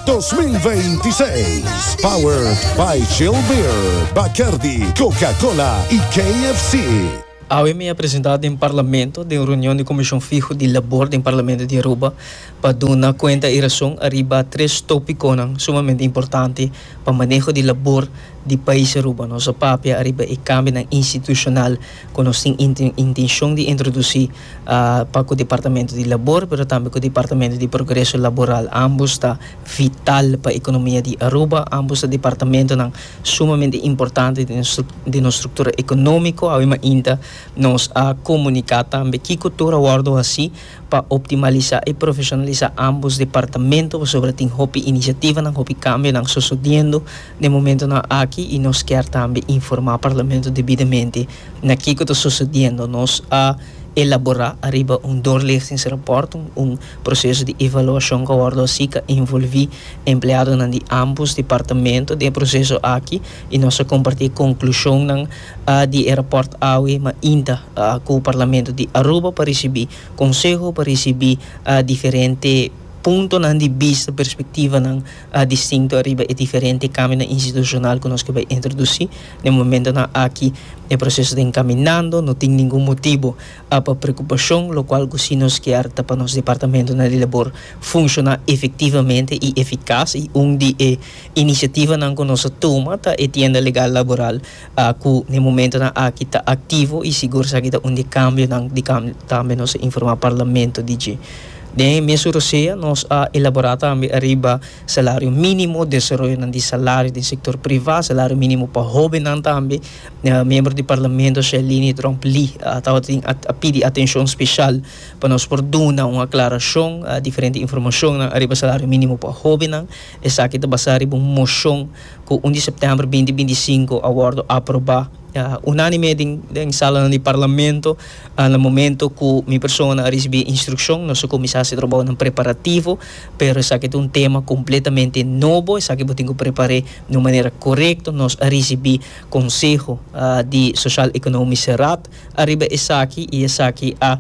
2026. Powered by Chill Beer, Bacardi, Coca-Cola y KFC. Awe mi a presenta den Parlamento den reunion di Comision Fiho di Labor den Parlamento di Aruba pa duna cuenta y rason ariba tres topiconan sumamente importante pa maneho di labor di pais Aruba. Nos a papia ariba e cambionan institucional cu nos tin intencion di introduci. pa ku Departamento di Labor pero tambe ku Departamento di Progreso Laboral. Ambos ta vital pa ekonomia di Aruba. Ambos ta departamentonan sumamente importante den nos struktura ekonomiko. Awe mainta nos a komuniká tambe kiko tur a wòrdu hasi pa optimalisá i profeshonalisá ambos departamento pasobra tin hopi inisiativanan, hopi kambionan sosodiendo den momentonan aki y nos kier tambe informa Parlamento debidamente na kico ta sucediendo. Nos a elabora ariba un doorlichtingsrapport, un proceso di evaluacion cu a wordo haci cu a envolvi empleadonan di ambos departamento den e proceso aki y nos a comparti e conclusionnan di e rapport awe mainta cu Parlamento di Aruba pa ricibi conseho, pa ricibi diferente puntonan di bista, perspectivanan a distinto riba e diferente kamionan institushonal ku nos ke bai introdusí. Den momentonan aki e proseso ta enkaminando, no tin ningun motibu pa preokupashon, lokual ku si nos kier ta pa nos departamentonan di labor funshoná efektivamente i efikas i un di e inisiativanan ku nos a tuma ta e tienda legal laboral Ta cu n'e momentonan aki ta activo y sigur esaki ta un di e cambionan di cam tambe nos a informa Parlamento di dje. Den e mes Urosea nos a elabora tambe ariba salario minimo, desaroyonan di salario den sector priva, salario minimo pa hobennan tambe. Miembro di Parlamento Shelini Drump Lee tabatin a a pidi atencion special pa nos por duna un aclaracion diferente informacionnan ariba salario minimo pa hobennan. Esaki ta basa riba un mocion. cu un di september binti binti i sinku a wordo aproba unanime den salanan di Parlamento na momento cu mi persona a ricibi e instruccion nos a cuminsa haci e trabounan preparativo pero esaki ta un tema completamente nobo esaki bo tin cu prepar'e di un manera corecto nos a ricibi conseho di social economische raad ariba esaki y esaki a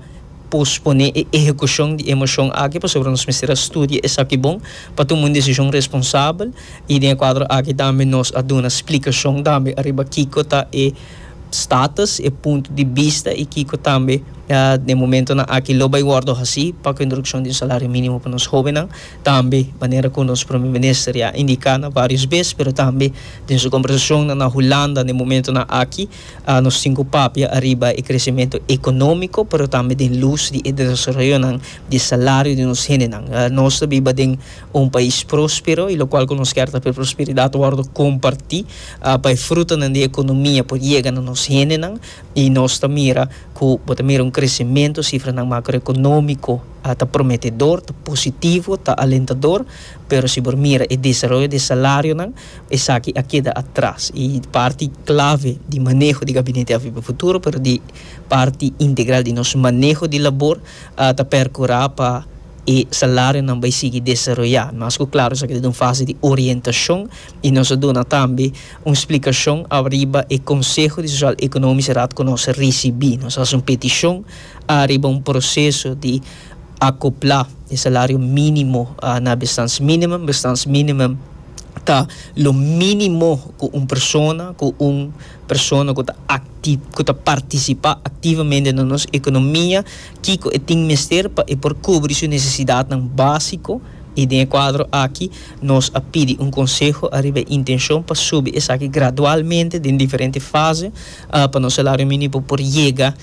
pospone e ehecucion di e mocion aki pasobra nos mester a studia esaki bon pa tuma un decision responsabel. I den e kuadro aki tambe nos a duna splikashon tambe ariba kiko ta e status, e punto di bista i kiko tambe den momentonan aki lo bai wòrdu hasi pa ku introdukshon di un salario mínimo pa nos hóbennan. Tambe manera ku nos Prome Minister ya a indiká na vários bes pero tambe den su kombersashonnan na Hulanda den momentonan aki nos tin ku papia ariba e kresementu ekonómiko pero tambe den lus di e desaroyonan di e salario di nos hendenan. Nos ta biba den. Un pais próspero i lokual ku nos kier ta pa e prosperidat wòrdu kompartí, pa e frutanan di e ekonomia por yega na nos hendenan i nos ta mira ku bo ta mira un kresementu, sifranan makroekonómiko ta prometedor, ta positivo, ta alentador, pero si bo mira e desaroyo di e salarionan esaki a keda atras i parti klave di maneho di Gabinete AVP Futuro pero di parti integral di nos maneho di labor ta perkurá pa e salarionan bai sigui desaroyá, mas ku klaro esaki ta den un fase di orientashon i nos a duna tambe un splikashon ariba e konseho di sosial ekonomi serat ku nos a risibí. Nos a hasi un petishon ariba un proseso di akoplá e salario mínimo na bestaansminimum. Bestaansminimum ta lo mínimo ku un persona ku un persona ku ta akti ku ta partisipá aktivamente na nos ekonomia. kiko e tin mester pa e por kubri su nesesidatnan básiko i den e kuadro aki nos a pidi un konseho ariba e intenshon pa subi esaki gradualmente den diferente fase pa nos salario mínimo por yega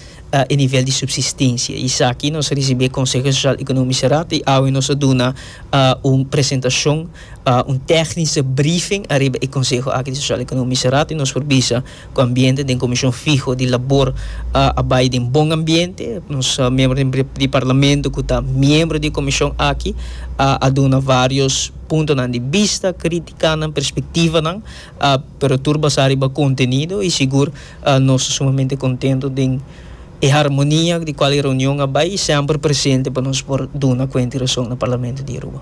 e nivel di supsistensia. Esaki nos a risibí e Konseho Sosial Ekonómis e Rad i awe nos a duna un presentashon, un tèknische briefing, ariba e konseho aki di Sosial Ekonómis e Rad i nos por bisa Cu ambiente den comision fiho di labor a bay den bon ambiente. Nos miembro di Parlamento cu ta miembro di e comision aki a duna varios puntonan di bista, criticanan, perspectivanan, pero tur basa riba contenido y sigur nos ta sumamente contento den e harmonia di cual e reunion a bay y semper presente pa nos por duna cuenta y rason na Parlamento di Aruba.